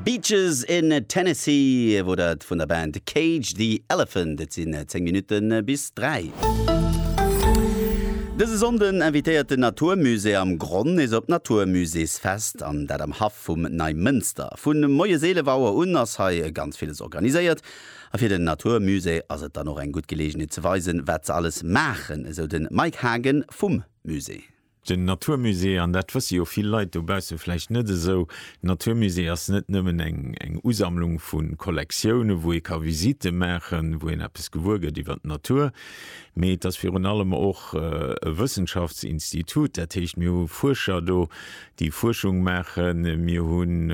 Beaches in Tennessee wor dat vun der Band Cage the Elephant. Et sinn 10 Minutten bis 3. Dëse Sonnden invitéiert den Natur Musée am Gronn nees op d'Natur Muséesfest, an dat am Haff vum Neimënster. Vu moies 11 Auer un ass hei ganz villes organiséiert, a fir den Natur Musée ass et dann och eng gutt Geleegenheet ze weisen, wat se alles maachen, esou de Mike Hagen vum Musée. Den Natur Musée, an dat wësse jo vill Leit dobausse vläicht net esou, den Natur Musée ass net nëmmen eng Usammlung vu Kollektioune wou ee ka Visitte maachen, wou een eppes gewuer gëtt iwwer d'Natur, mee et ass virun allem och e Wëssenschaftsinstitut. Dat heescht mir hu Fuerscher do déi Fuerschung maachen, mir hunn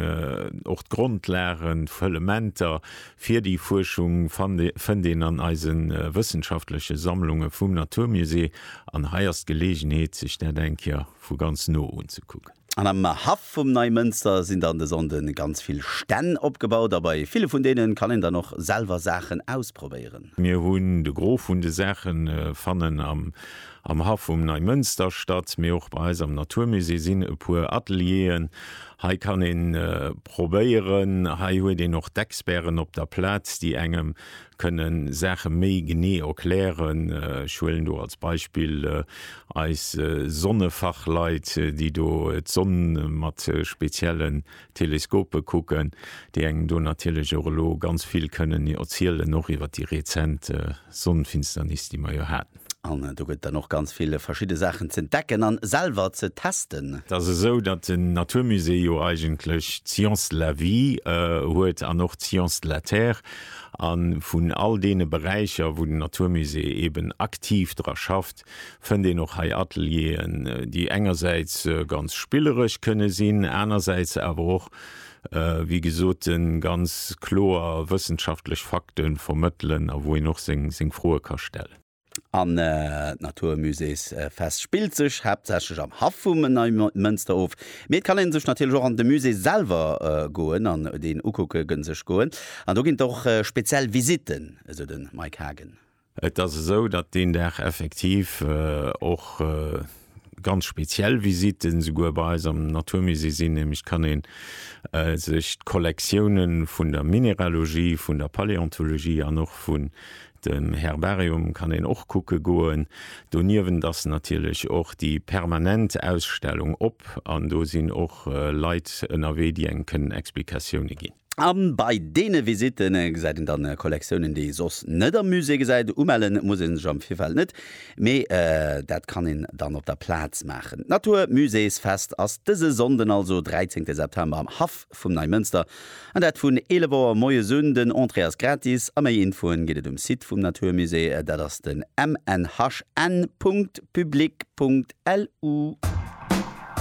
och d'Grondlagen, d'Fëllementer Fir déi Fuerschung fënnt een an eise wëssenschaftleche Sammlunge vum Naturmusée, an hei ass d'Geleegenheet, sech dat eng Kéier vu ganz no unzekucken. An am Haff vum Neimënster sinn dann de Sonnde ganz vill Stänn opgebaut, a bei ville vun deene kann een dann och selwer Saachen ausprobéieren. Mir hunn de Gros vun de Saache fannen am Am Haff um Neimënster statt, mee och bei eis am Naturmusée sinn e puer Atelieren. Hei kann een probéieren, hei huet een och d'Experten op der Plaz, déi engem kënnen Saache méi genee erklären. Ech huelen do als Beispill eis Sonnefachleit, déi do d'Sonn mat spezielle Teleskope kucken, déi engem do natierlech och elo ganz vill kënnen erzielen, och iwwer déi rezent Sonnenfinsternis, déi mer jo haten. An do gëtt et dann och ganz vill verschidde Saachen z'entdecken a selwer ze testen. Et ass esou, datt den Naturmusée jo eigentlech d'Science de la vie huet an och d'Science de la terre. A vun all deene Beräicher, wou den Naturmusée eeben aktiv dra schafft, fënnt een och hei Atelieren, déi engersäits ganz spilleresch kënne sinn, anersäits awer och wéi gesot, ganz kloer wëssenschaftlech Fakte vermëttelen a wou een och seng Froe ka stellen. An d'Naturmuséesfest spillt sech haaptsächlech am Haff vum Neimënster of, mee et kann ee sech natierlech och an de Musée selwer goen an deen ukucke sech goen. An do ginn et och speziell Visitten, esou de Mike Hagen. Et ass esou, datt deen Dag effektiv och ganz speziell Visitten esouguer bei eis am Naturmusée sinn, nämlech kann ee sech d'Kollektioune vun der Mineralogie, vun der Paläontologie an och vun dem Herbarium kann een och kucke goen. Doniewent ass natierlech och déi permanent Ausstellung op an do sinn och Leit ënnerwee, déi engem kënnen Explikatioune ginn. A bei deene Visitten gesäit een dann Kollektiounen, déi ee soss net am Musée gesäit. Umelle muss ee sech am Virfeld net, mee dat kann een dann op der Plaz maachen. D'Natur Muséesfest ass dëse Sonnden, also 13 September, am Haff vum Neimënster, an dat vun 11 Auer moies un. Den Entrée ass gratis a méi Infoen gëtt et um Site vum Natur Musée, dat ass den mnhn. Public. Lu.